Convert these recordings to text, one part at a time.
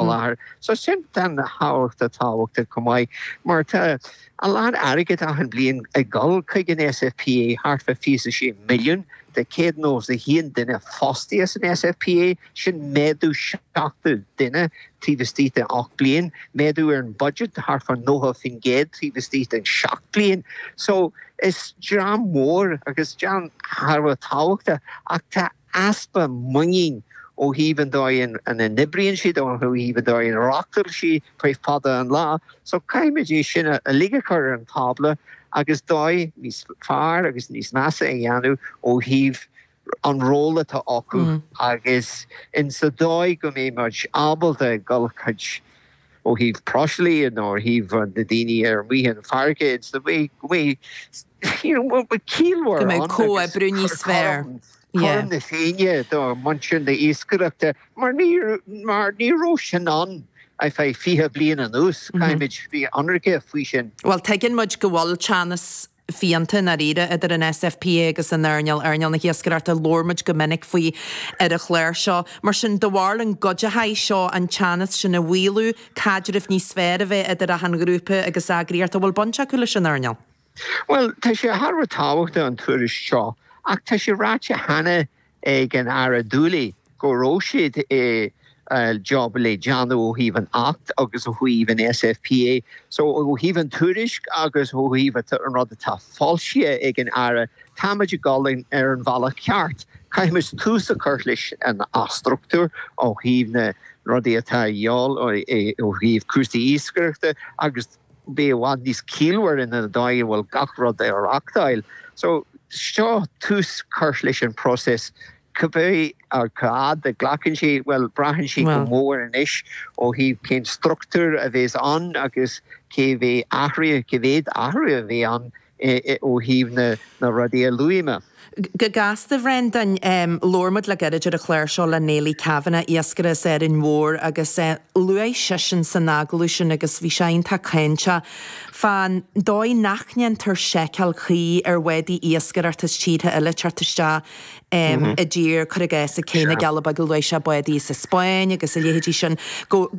a láthair so sin thar a bheith tábhachtach chomh maith mar tá a lán airgid achan bliain ag dul chuig an SFPA, thart fá fiche a sé milliún de 191 duine fostaithe san SFPA, sin méadú 70 duine taobh istigh de 8 mbliain, méadú ar an budget de thart fá 90% taobh istigh den 7 bliain. So is dream mhór agus dream thar a bheith tábhachtach ach tá easpa muinín ó thaobh an dóigh ina n-oibríonn siad, ó thaobh an dóigh ina reáchtáil siad go dtí fada an lá seo caithfimid é sin uilig a chur ar an tábla agus dóigh níos fearr agus níos measa a dhéanamh ó thaobh an ról atá acu agus insa dóigh go mbeidh muid ábalta dul chuig ó thaobh próiseálaithe nó ó thaobh na daoine ar mhaith an fharraige it's the way go mbeidh you know go mbeidh go ciallmhar mbeidh ann agus comhoibriú níos fearr cothrom yeah cothrom na féinne do muintir na hiascaireachta mar ní mar ní raibh sin ann ar feadh 20 bliain anuas. Caithfimid bheith ionraice faoi sin. Bhuel tuigeann muid go bhfuil teannas blianta i ndáiríre idir an SFPA agus an earnáil, earnáil na hiascaireachta. Labhair muid go minic faoi ar an chláir seo. Mar sin dar ndóigh an gcuideochaidh seo an teannas sin a mhaolú, caidreamh níos fearr a bheith idir achan ghrúpa agus eagraíocht, a bhfuil baint acu leis an earnáil? Bhuel, tá sé thar a bheith tábhachtach an tuairisc seo ach tá sé ráite cheana ag an Aire Dooley go raibh sé de job le déanamh ó thaobh an Acht agus ó thaobh an SFPA. So ó thaobh an tuairisc agus ó thaobh an rud atá foilsithe ag an Aire, táimid ag dul ar an bhealach ceart. Caithfimid tús a chur leis an athstruchtúrú ó thaobh na rudaí atá a dhíobháil ó thaobh cúrsaí iascaireachta agus. bheith i bhfad níos ciallmhar insa dóigh a bhfuil gach rud á reachtáil. So seo tús curtha leis an próiseas. Cibé cá fhad a ghlacann sé, bhuel, braitheann sé go mór anois ó thaobh cén struchtúr a bhéas ann agus cé bheidh athruithe, cé mhéad athruithe a bheidh ann. ó thaobh na rudaí a luaigh mé. Go gasta, Brendan, labhair muid le gairid ar an chláir seo le Néilí Kavanagh, iascaire as Árainn Mhór, agus luaigh seisean san agallamh sin, agus bhí sé iontach cáinteach, fán dóigh nach ndéantar seiceáil cuí ar bhádaí iascaireachta as tíortha eile teacht isteach i dtír cur i gcás sna Cealla Beaga luaigh sé bádaí as an Spáinn agus a leithéidí sin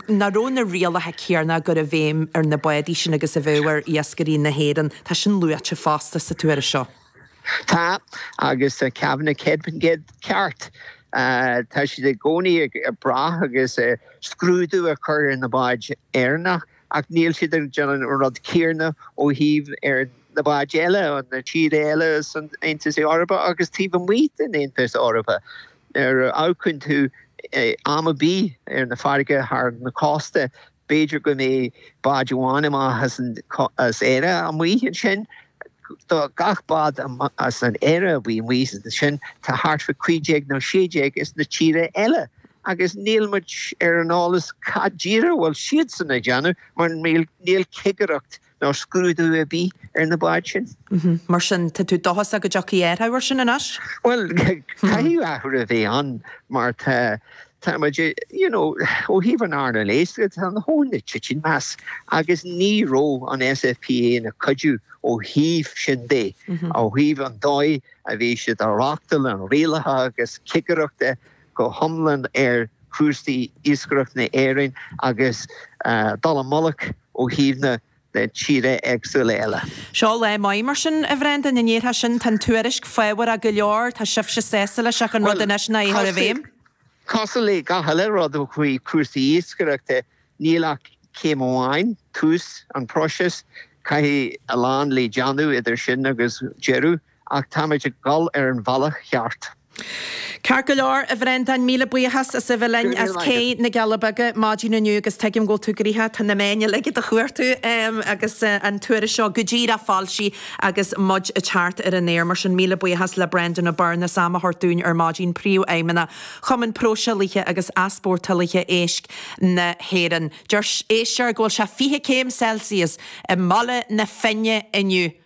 nach raibh na rialacha céanna á gcur i bhfeidhm ar na bádaí sin agus a bheadh ar iascairí na hÉireann tá sin luaite fosta sa tuairisc seo. Tá, agus tá Kavanagh céad faoin gcéad ceart. Tá siad i gcónaí ag brath agus scrúdú a chur ar na báid Éireannacha Ach níl siad ag déanamh an rud céarna ó thaobh ar na báid eile, na tíre eile san Aontas Eorpach agus taobh amuigh den Aontas Eorpach. Nuair a amharcann tú am ar bith ar na farraige thar na cósta, b'fhéidir go mbeidh báid amháin amach as Éire amuigh ansin, do gach bád as an Éire a bíos amuigh ansin tá thart fá cúig déag nó sé déag as na tíre eile agus níl muid ar an eolas cad díreach a bhfuil siadsan ag déanamh mar níl cigireacht nó scrúdú ar bith ar na báid sin. Mar sin tá tú dóchasach go dtiocfaidh athruithe ar sin anois? Bhuel caithfidh athrú a bheith ann mar tá Táimid ag, you know, ó thaobh an earnáil éisc de, tá an whole lot ag titim as agus ní raibh an SFPA ina cuidiú ó thaobh sin de, ó thaobh an dóigh a bhí siad ag reáchtáil, an rialaithe agus cigireachta go hiomlán ar chúrsaí iascaireachta na hÉireann agus dul i mullach ó thaobh na le tíre éagsúla eile. Seo lá maith mar sin, a Bhreandáin, an ndéarfá sin? Tá an tuairisc fabhrach go leor, tá sibhse sásta leis ach an rud anois ná é a chur i bhfeidhm. Bhuel, cosúil le gach uile rud ó thaobh cúrsaí iascaireachta, níl ach céim amháin, tús an phróisis, caithfidh a lán le déanamh idir sin agus deireadh Ach táimid ag dul ar an bhealach cheart. Ceart go leor, a Bhreandáin, míle buíochas as a bheith linn as Cé na gCealla Beaga maidin inniu agus tuigim go bhfuil tú ag rith, tá na meáin uilig i do do chuartú agus an tuairisc seo go díreach á foilsíu agus muid ag teacht ar an aer. Mar sin, míle buíochas le Breandán Ó Beirn as am a thabhairt dúinn ar maidin, Príomhfheidhmeannach Chumann Próiseálaithe agus Easpórtálaithe Éisc na hÉireann. Dúirt éisteoir go bhfuil sé 20 céim Celsius i mBaile na Finne inniu.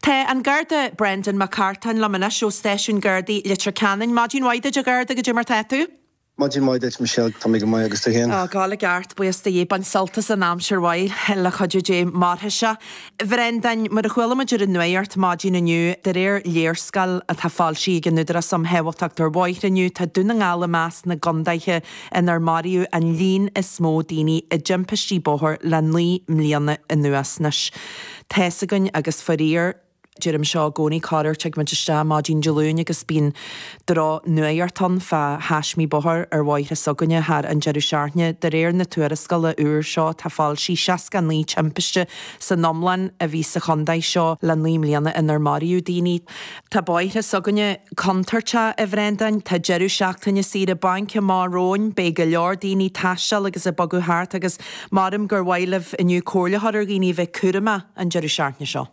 Tá an Garda Brendan Mac Cartáin liom anois ó Stáisiún Gardaí Leitir Ceanainn. Maidin mhaith duit, a Gharda, goidé mar tá tú? Maidin mhaith duit, a Mhichelle, tá mé go maith agus tú féin? Tá, go leor ceart, buíochas do Dhia. Ag baint sult as an aimsir mhaith, le cuidiú Dé mairfidh sé. A Bhrendan, mar a chuala muid ar an nuaíocht maidin inniu, de réir léarscáil atá foilsithe ag an Údarás um Shábháilteacht ar Bhóithre inniu, tá Dún na nGall i measc na gcontaetha inar maraíodh an líon is mó daoine i dtimpistí bóthair le naoi mbliana anuas. Anois. tá a fhios againn agus fairíor deirim seo i gcónaí corr-uair tig muid isteach maidin Dé Luain agus bíonn drochnuaíocht ann fá thaismí bóthair ar bhóithre s'againne thar an deireadh seachtaine. De réir na tuarascála úr seo atá foilsithe 69 timpiste san iomlán a bhí sa chontae seo le naoi mbliana inar maraíodh daoine. Tá bóithre s'againne contúirteach a Bhreandáin. Tá deireadh seachtaine saoire bainc amach romhainn. Beidh go leor daoine ag taisteal agus ag bogadh thart agus Maraim gur mhaith libh inniu comhairle a thabhairt ar dhaoine a bheith cúramach an deireadh seachtaine seo.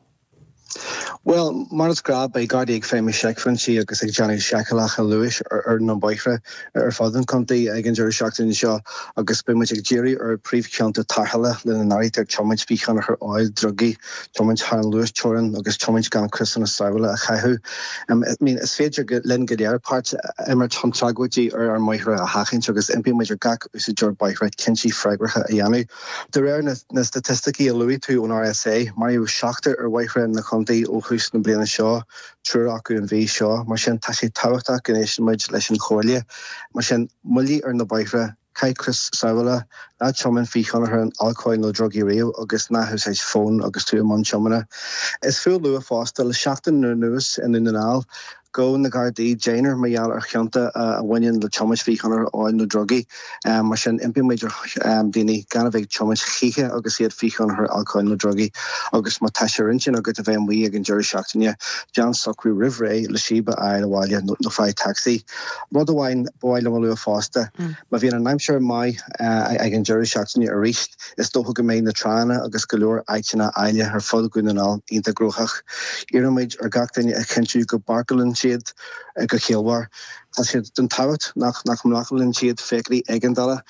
Bhuel, mar is gnáth beidh Gardaí ag feidhmiú seicphointí agus ag déanamh seiceálacha luais ar na bóithre ar fud an chontae ag an deireadh seachtaine seo agus beidh muid ag díriú ar phríomhchionta tarrthála lena n-áirítear tiomáint faoi thionchar óil, drugaí, tiomáint thar an luasteorainn agus tiomáint gan criosanna sábhála a chaitheamh. I mean, is féidir linn go léir páirt a imirt chun tragóidí ar ár mbóithre a sheachaint agus impímid ar gach úsáideoir bóithre cinntí freagracha a dhéanamh. De réir na staitisticí a luaigh tú ón rsa, maraíodh seachtar ar bhóithre na Chontae ó thús na bliana seo, triúr acu an mhí seo. Mar sin tá sé tábhachtach go n-éisteann muid leis an chomhairle. Mar sin, moilligh ar na bóithre, caith crios sábhála, ná tiomáin faoi thionchar an alcóil nó drugaí riamh agus ná húsáid fón agus tú i mbun tiomána. Is fiú a lua fosta le seachtain anuas i nDún na nGall, Ghabh na Gardaí deichniúr mar gheall ar chionta a bhaineann le tiomáint faoi thionchar óil nó drugaí. Mar sin, impímid ar dhaoine gan a bheith ag tiomáint choíche agus iad faoi thionchar alcóil nó drugaí agus má tá sé ar intinn agat a bheith amuigh ag an deireadh seachtaine, déan socrú roimh ré le síob a fháil abhaile nó faigh tacsaí. Rud amháin ba mhaith liom a lua fosta, má bhíonn an aimsir go maith ag an deireadh seachtaine arís, Is dócha go mbeidh na tránna agus go leor áiteanna áille ar fud Dhún na nGall iontach gnoitheach. Iarraimid ar gach duine a chinntiú go bpáirceálann siad go ciallmhar. Tá sé den tábhacht nach mblocálann siad feithiclí éigeandála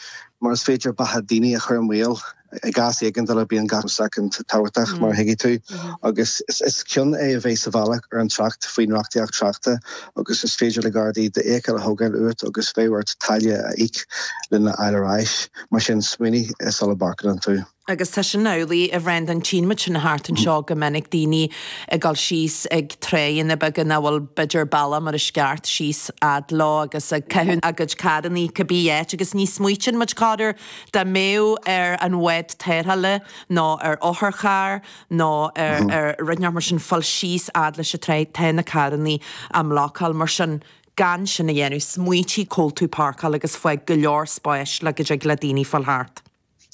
mar is féidir beatha daoine a chur i mbaol. I gcás éigeandála bíonn gach soicind tábhachtach mar a thuigfidh tú agus is cion é a bheith sa bhealach ar an trácht faoin reachtaíocht tráchta agus is féidir le Gardaí d'fheithicil a thógáil uait agus bheadh ort táille a íoc lena fháil ar ais. Mar sin, smaoinigh sula bpáirceálann tú. Agus tá sin amhlaidh a Bhreandáin, tchíonn muid sin thart anseo go minic, daoine ag dul síos ag tránna beaga nach bhfuil b'fhéidir bealach mór i gceart síos fhad leo agus ag caitheamh a gcuid carrannaí cibé áit agus ní smaoitíonn muid corruair dá mbeadh ar an bhád tarrthála nó ar otharcharr nó ar rud ar bith mar sin fáil síos fhad leis an tráigh, tá na carrannaí á mblácáil mar sin Gan sin a dhéanamh, smaoitigh cá háit a bhfuil tú ag páirceáil agus fág go leor spáis le go dtig le daoine fáil thart.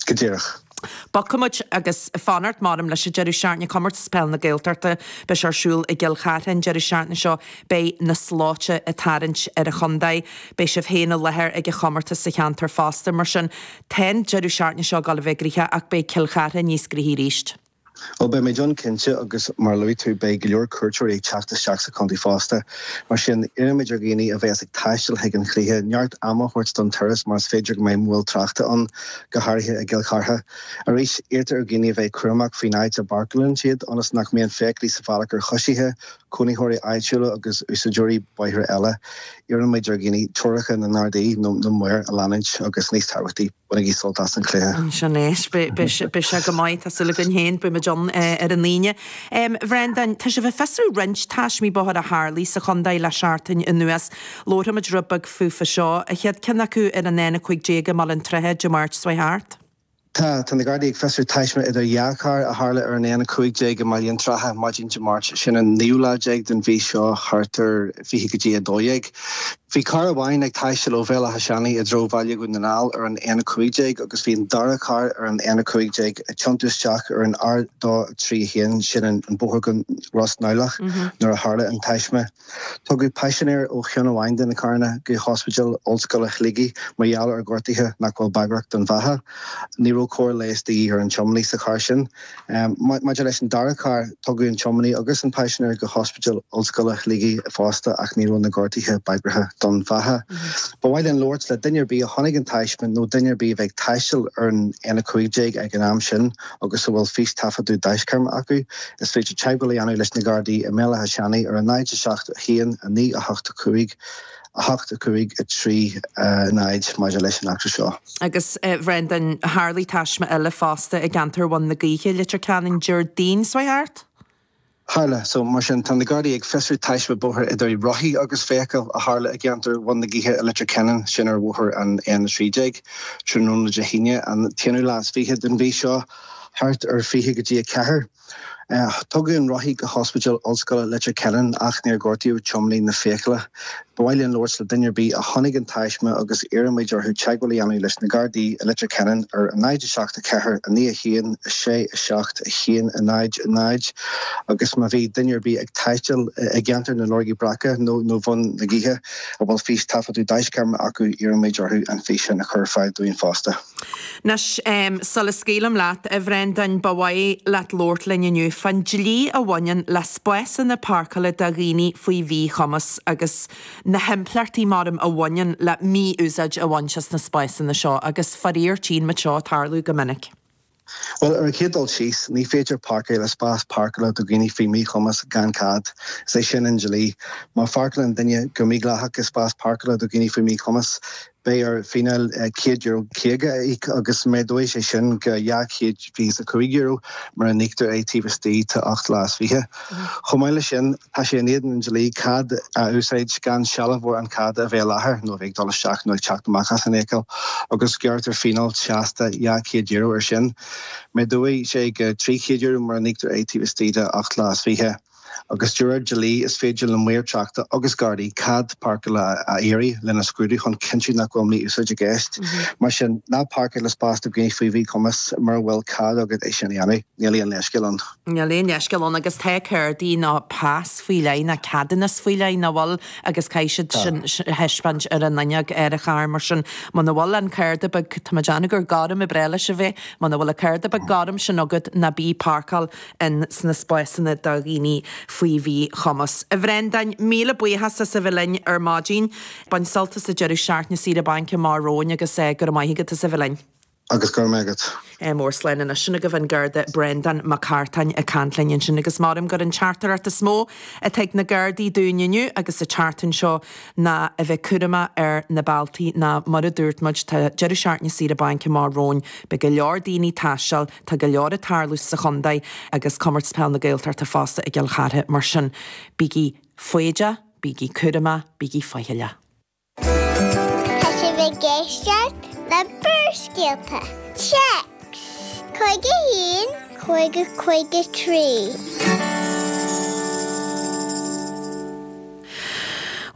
Go díreach. Bogfaidh muid ar aghaidh go spórt, maraim leis an deireadh seachtaine Comórtas Peile na Gaeltachta beidh sé ar siúl i gCill Chartha an deireadh seachtaine seo. Beidh na slóite ag tarraingt ar an chontae. Beidh sibh féin i láthair ag an chomórtas sa cheantar fosta. Mar sin, tá an deireadh seachtaine seo ag dul a bheith gnoitheach ach beidh Cill Chartha níos gnoithí arís. Bhuel, beidh muid ann cinnte agus mar a luaigh tú, beidh go leor cuairteoirí ag teacht isteach sa chontae fosta. Mar sin, iarraimid ar dhaoine a bheas ag taisteal chuig an chluiche neart ama a thabhairt don turas mar is féidir go mbeidh moill tráchta ann, go háirithe i gCill Chartha. Arís, iarrtar ar dhaoine a bheith cúramach faoin áit a bpáirceálann siad ionas nach mbíonn feithiclí sa bhealach ar choisithe, cónaitheoirí áitiúla agus úsáideoirí bóithre eile. Iarraimid ar dhaoine treoracha na nGardaí nó na maor a leanúint agus níos tábhachtaí. Bainigí sult as an chluiche. Sin é. Beidh sé go maith, tá súil againn féin. Beidh muid ann ar an Aoine. A Bhreandáin, tá sibh ag fiosrú roinnt taismí bóthair a tharlaigh sa chontae le seachtain anuas. Labharfaimid rud beag fúthu seo, an chéad cheann acu ar an N15 i mBaile an tSratha Dé Máirt seo thart. Tá na Gardaí ag fiosrú taisme idir dhá charr a tharla ar an N15 i mBaile an tSratha maidin Dé Máirt, sin an naoú lá déag den mhí seo, thart ar 20 go dtí 12. Bhí carr amháin ag taisteal ó Bhéal Átha Seanaidh i dtreo Bhaile Dhún na nGall ar an N15 agus bhí an dara carr ar an N15 ag tiontú isteach ar an R231, sin an bóthar go Ros Neamhlach, nuair a tharla an taisme. Tugadh paisinéir ó cheann amháin de na carranna go hOspidéal Ollscoile Shligigh mar gheall ar ghortuithe nach bhfuil bagrach don bheatha. Ní raibh cóir leighis de dhíth ar an tiománaí sa charr sin. Maidir leis an dara carr, tugadh an tiománaí agus an paisinéir go hOspidéal Ollscoile Shligigh fosta ach ní raibh na gortuithe bagrach don bheatha. Ba mhaith linn labhairt le duine ar bith a chonaic an taisme nó duine ar bith a bhí ag taisteal ar an N15 ag an am sin agus a bhfuil fís-taifeadadh daisc-cheamara acu. Is féidir teagmháil a dhéanamh leis na Gardaí i mBéal Átha Seanaidh ar a 0 7 1 9 8 5 8 a 5 a 3 a 0 maidir leis an eachtra seo. Agus, a Bhreandáin, tharlaigh taisme eile fosta i gceantar Bhun na Gaoithe i Leitir Ceanainn Déardaoin seo thart. Tharla, so, mar sin, tá na Gardaí ag fiosrú taisme bóthair idir rothaí agus feithicil a tharla i gceantar Bhun na Gaoithe i Leitir Ceanainn, sin ar bhóthar an N13, tráthnóna Dé hAoine, an t-aonú lá is fiche den mhí seo thart, ar fiche go dtí a ceathair. Tugadh an rothaí go hOspidéal Ollscoile Leitir Ceanainn ach níor gortaíodh tiománaí na feithicle. Ba mhaith linn labhairt le duine ar bith a chonaic an taisme agus iarraimid orthu teagmháil a dhéanamh leis na Gardaí i Leitir Ceanainn ar a náid a seacht a ceathair a naoi a haon a sé a seacht a haon a náid a náid agus má bhí duine ar bith ag taisteal i gceantar na Lorgaí Brice nó Bhun na Gaoithe a bhfuil fís-taifeadadh daisc-cheamara acu iarraimid orthu an fís sin a chur ar fáil dúinn fosta. Anois, sula scaoilim leat, a Bhreandáin, ba mhaith leat labhairt linn inniu fán dlí a bhaineann le spásanna páirceála do dhaoine faoi mhíchumas agus na himpleachtaí, maraim, a bhaineann le mí-úsáid a bhaint as na spásanna seo agus, faraor, tchíonn muid seo ag tarlú go minic. Bhuel, ar an chéad dul síos, ní féidir páirceáil i spás páirceála do dhaoine faoi mhíchumas gan cead, is é sin an dlí. Má pháirceálann duine go mídhleathach i spás páirceála do dhaoine faoi mhíchumas, beidh air fíneáil €150 a íoc agus méadóidh sé sin go €225 mura n-íoctar é taobh istigh de 8 lá is 20. Chomh maith leis sin, tá sé in éadan an dlí cead a úsáid gan sealbhóir an cheada a bheith i láthair nó a bheith ag dul isteach nó ag teacht amach as an fheithicil agus gearrtar fíneáil seasta €200 air sin. Méadóidh sé go €300 mura n-íoctar é taobh istigh de ocht lá is fiche. Agus de réir dlí, is féidir le maoir tráchta agus Gardaí cead páirceála a iarraidh lena scrúdú chun cinntiú nach bhfuil mí-úsáid i gceist. Mar sin, ná páirceáil i spás do dhaoine faoi mhíchumas mura bhfuil cead agat é sin a dhéanamh. Níl aon leithscéal ann. Níl aon leithscéal ann agus tá cárdaí nó pas faoi leith nó ceadúnas faoi leith, nach bhfuil? Agus caithfidh siad Tá. sin a thaispeáint ar an fhuinneog ar an charr mar sin. Muna bhfuil an cárda beag, tá mé ag déanamh gur gorm ab fhearr leis a bheith, muna bhfuil an cárda beag gorm sin agat ná bí ag páirceáil in sna spásanna do dhaoine faoi mhíchumas. A Bhreandáin, míle buíochas as a bheith linn ar maidin. Bain sult as an deireadh seachtaine saoire bainc amach romhainn agus go raibh maith agat as a bheith linn. agus go raibh maith agat. Mór slán anois. Sin agaibh an Garda Breandán Mac Cartáin ag caint linn ansin agus measaim gurb í an teachtaireacht is mó atá ag na Gardaí dúinn inniu agus an tseachtain seo ná a bheith cúramach ar na bealtaí nó mar a dúirt muid tá Deireadh Seachtaine na Saoire Bainc amach romhainn beidh go leor daoine ag taisteal tá go leor ag tarlú sa chontae agus Comórtas Peil na Gaeltachta fosta i gCill Chartha mar sin bígí foighdeach, bígí cúramach, bígí faichilleach. Tá sibh ag éisteacht le Barrscéalta Téacs 51, 50, 53.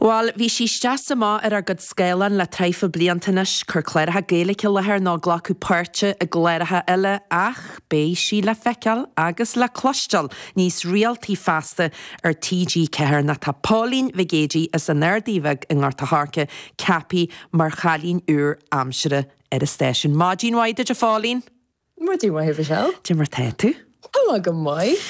Bhuel, bhí sí isteach is amach ar ár gcuid scáileán le tréimhse blianta anois, ag cur cláracha Gaeilge i láthair nó ag glacadh páirte i gcláracha eile ach beidh sí le feiceáil agus le cloisteáil níos rialtaí feasta ar TG4 nó tá Pauline Nic Géidigh as an Ardaidh Bheag i nGort a' Choirce ceaptha mar chailín úr aimsire ar an stáisiún. Maidin mhaith duit a Phauline! Maidin mhaith a Mhichelle! Cad é mar tá tú? Tá mé go maith.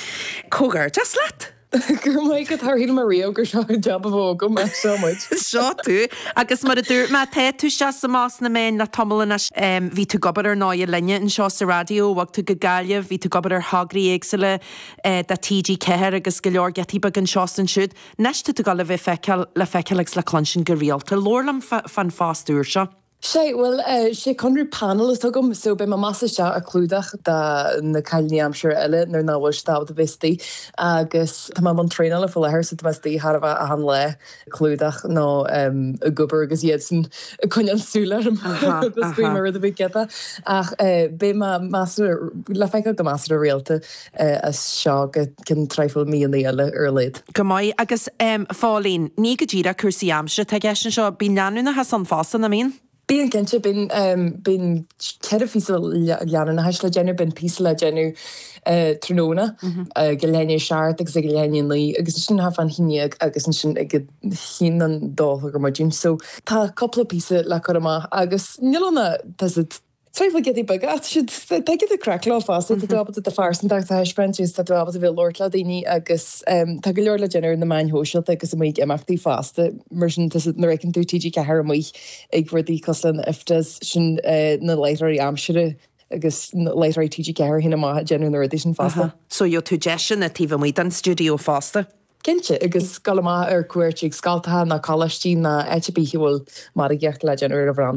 Comhghairdeas leat! Go raibh maith agat, char shíl mé riamh gur seo an jab a bheadh agam ach seo muid. Seo tú! Agus mar a dúirt mé, tá tú isteach is amach sna meáin le tamall anois. Bhí tú ag obair ar ndóigh linne anseo sa raidió, bhog tú go Gaillimh, bhí tú ag obair ar thograí éagsúla do TG4 agus go leor giotaí beaga anseo is ansiúd, anois tá tú ag dul a bheith feiceáil, le feiceáil agus le cluinstin go rialta. Labhair liom fán phost úr seo. Sé, bhuel, sé conradh painéil atá agam so beidh mé amach is isteach ag clúdach do na cailíní aimsire eile nuair nach bhfuil siad ábalta bheith istigh agus tá mé i mbun traenála faoi láthair so tá mé istigh chóir a bheith achan lá. clúdach nó ag obair agus iadsan ag coinneáil súil orm agus ag inse má tá rud ar bith ciotach ach beidh mé measartha le feiceáil go measartha rialta as seo go ceann traidhfil míonna eile ar a laghad. Go maith. Agus Phauline, ní go díreach cúrsaí aimsire atá i gceist anseo, bíonn leanúnachas ann fosta, nach mbíonn? Bíonn cinnte. Bíonn, bíonn ceithre phíosa leanúnachais le déanamh. Bíonn píosa le déanamh tráthnóna ag leath i ndiaidh 7 agus ag leath i ndiaidh 9 agus ansin ag cúig chun a haon déag agus ansin ag cúig chun an dó a chlog ar maidin. So tá cúpla píosa le cur amach agus níl ionadh, tá siad triail giota beag ach tá siad, tá giota craic leo fosta. Tá tú ábalta do phearsantacht a thaispeáint agus tá tú ábalta bheith ag labhairt le daoine agus tá go leor le déanamh ar na meáin shóisialta agus amuigh ag imeachtaí fosta mar sin tá siad, nuair a fheiceann tú TG4 amuigh, ag rudaí cosúil leis na IFTAs, sin na láithreoirí aimsire agus láithreoirí TG4 féin amuigh ag déanamh na rudaí sin fosta. So gheobhadh tú deiseanna taobh amuigh den stiúideo fosta? Cinnte, agus dul amach ar cuairt chuig scoltacha nó coláistí nó áit ar bith a bhfuil margaíocht le déanamh ar an bhranda.